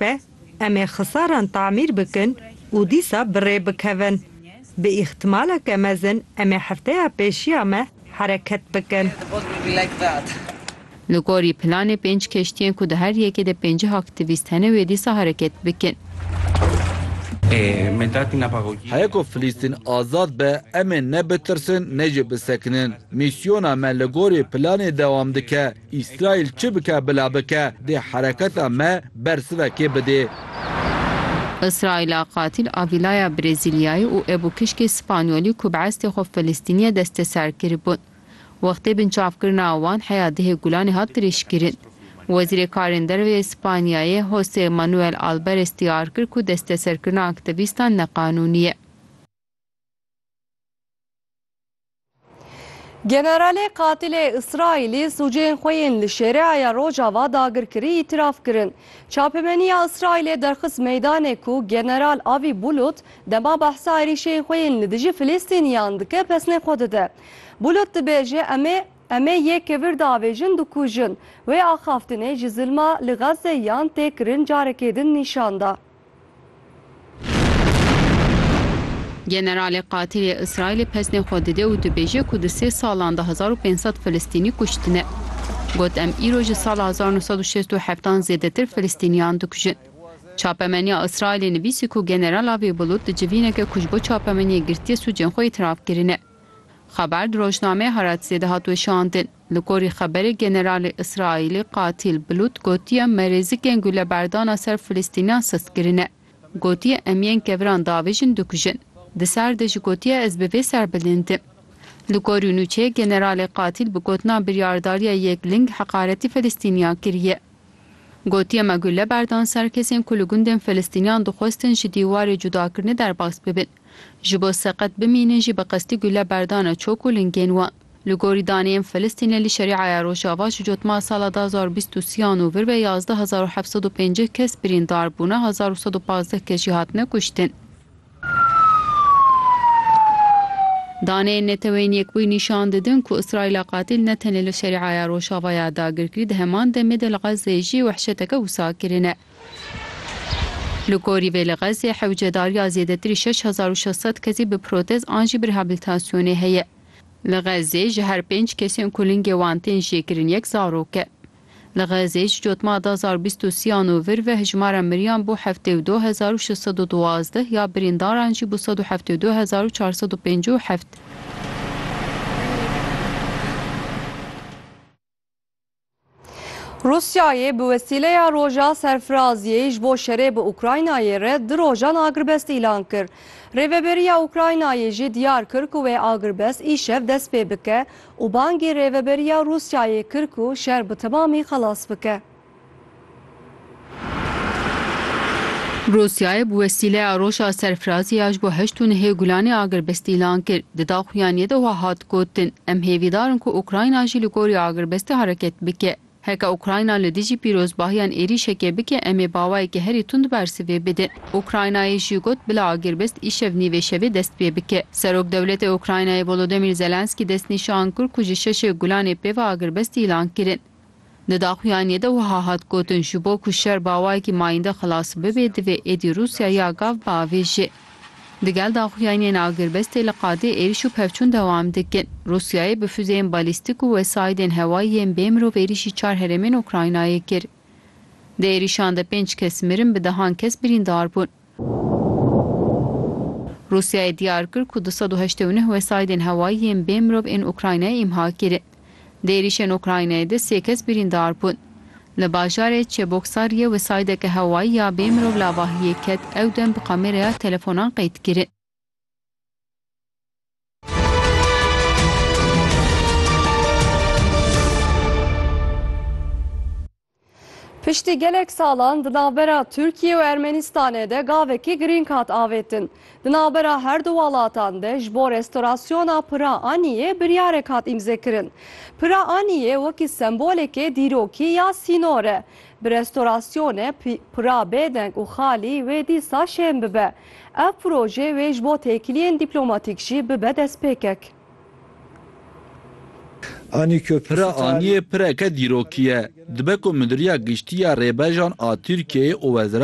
Be, em ê xisaran tamîr bikin û dîsa bi rê bikevin. Bi îxtîmaleke mezin em ê hefteya pêşiya me hereket bikin. Li gorî planê pênc keştiyên ku di her yekê de pêncîh aktîvîst hene wê dîsa hereket bikin. Heye ku Filîstîn azad be em ê ne bitirsin ne jî bisekinin. Mîsyona me li gorî planê dewam dike. Îsraîl çi bike bila bike dê hereketa me bersivekê bidê. Îsraîla qatîl a vîlaya Brezîlyayê û ebûkişkê Spanyolî ku bi estê xwe Filistînîye desteser kiribûn. Wextê binçavkirina wan heya dihê Gulanê hat dirêjkirin. Wezîrê Karên Derve yê Spanyayê Jose Manuel Albares diyar kir ku desteserkirina aktevîstan neqanûnî ye. Generalê qatilê Îsraîlî sûceyên xwe yên li Şêreaya Rojava dagirkirî îtîraf kirin. Çapemeniya Îsraîlê derxist meydanê ku General Avî Bulut dema behsa êrîşên xwe yên li dijî Filîstîniyan dike pesnê xwe dide. Bulut dibêje em ê em ê yê kevir davêjin dikujin. Wê axaftinê ji zilma li Xezze yan tê kirin carekê din nîşan da. Generalê qatilê Îsraîlê pesnê xwe dide û dibêje ku di sê salan de hezar û pênc sed Filistînî kuştine. Got em îro ji sala hezar û neh sed û şêst û heft an zêdetir Filistîniyan dikujin. Çapemeniya Îsraîlê nivîsî ku General Avi Bulut di civîneke ku ji bo çapemeniyê girtiye sûcên xwe îtiraf kirine. Xeber di rojnameyê Haratzê de hat weşandin. Li gorî xeberê Generalê Îsraîlê Katîl Bilût gotiye me rêzikên guleberdana ser Filistînan sist kirine. Gotiye em yên keviran davêjin dikujin. Di sar de jî gotiye ez bi vê serbilind im. Li gorî nûçeyê Generalê Katîl bi gotina biryardariya yek ling heqaretî Filistîniyan kiriye. Gotiye me gule berdan ser kesên ku li gundên Filistîniyan dixwestin ji dîwarê cudakirinê derbas bibin. Ji bo seqet bimînin jî bi qestî gule berdane çok û lingên wan. Li gorî daneyên Filistînê li Şerîaya Rojava ji cotmara sala du hezar û bîst û sî an û vir ve yazdeh hezar û heft sed û pêncî kes birîndar bûne, hezar û sed û pazdeh kes jî hatine kuştin. Daneyên Neteweyên Yekbûyî nîşan didin ku Îsraîla qatîl ne tenê li Şerîaya Rojava ya dagirkirî di heman demê de li Xezzeyê jî wehşeteke wisa kirine. Li gorî vê li Xezzeyê hewcedariya zêdetirî şeş hezar û şeş sed kesî bi protez an jî bi rehabilitasyonê heye. Li Xezzê ji her pênc kesên ku lingê wan tên jêkirin yek zarok e. Li Xezzê ji cotma du hezar û bîst û sî an û vir ve hejmara miriyan bû heftê û du hezar û şeş sed û duwazdeh ya birîndaran jî bû sed û heftê û du hezar û çar sed û pêncî û heft. Rûsyayê bi wesîleya roja serfiraziyê ji bo şerê bi Ukraynayê re du rojan agirbest îlan kir. Rêveberiya Ukraynayê jî diyar kir ku wê agirbest îşev dest pê bike û bangî rêveberiya Rûsyayê kir ku şer bi temamî xelas bike. Rûsyayê bi wesîleya roja serfirazî ya ji bo heşt û nehê Gulanê agirbest îlan kir. Di daxuyaniyê de wiha hat gotin, Em hêvîdar in ku Ukrayna jî li gorî agirbestê hereket bike. Heke Ukrayna li dijî pîrozbahiyan êrîşekê bike em ê bawayeke herî tund bersivê bidin. Ukraynayê jî got bila agirbest îşev nîvê şevê dest pê bike. Serokwdewletê Ukraynayê Volodymyr Zelenskî destnîşan kir ku ji şeşê Gulanê pê ve agirbest îlan kirin. Di daxuyaniyê de wiha hat gotin, Ji bo ku şer bi awayekî mayînde xilas bibe divê êdî Rûsya ya gav biavêjê. Digel daxuyaniyên agirbestê li qadê êrîş û pevçûn dewam dikin. Rûsyayê bi fuzeyên balîstîk û wesaîdên hewayî yên bê mirov êrîşî çar herêmên Ukraynayê kir. Di êrîşan de pênc kes mirin bi dehan kes birîndar bûn. Rûsyayê diyar kir ku du sed û heştê û neh wesaîdên hewayî yên bê mirov ên Ukraynayê îmha kirin. Di êrîşên Ukraynayê de sê kes birîndar bûn. Li bajarê Çeboksariyê wesaîdeke hewayî ya bê mirov lavahiyê ket ew dem bi kameraya telefonan qeyd kirin. Piştî gelek salan di navbera Tirkiye û Ermenistanê de gavekî girîng hat avêtin. Di navbera her du welatan de ji bo restorasyona Pira Aniyê biryarek hat îmzekirin. Pira Aniyê wekî sembolekê dîrokî ya sînor e. Bi restorasyonê Pira bêdeng û xalî wê dîsa şên bibe. Ev proje wê ji bo têkiliyên dîplomatîk jî bibe destpêkek. Pira Aniyê pireke dîrokî ye. Dibe ku Midiriya Giştî ya Rêbejan a Tirkiyeyê û Weziret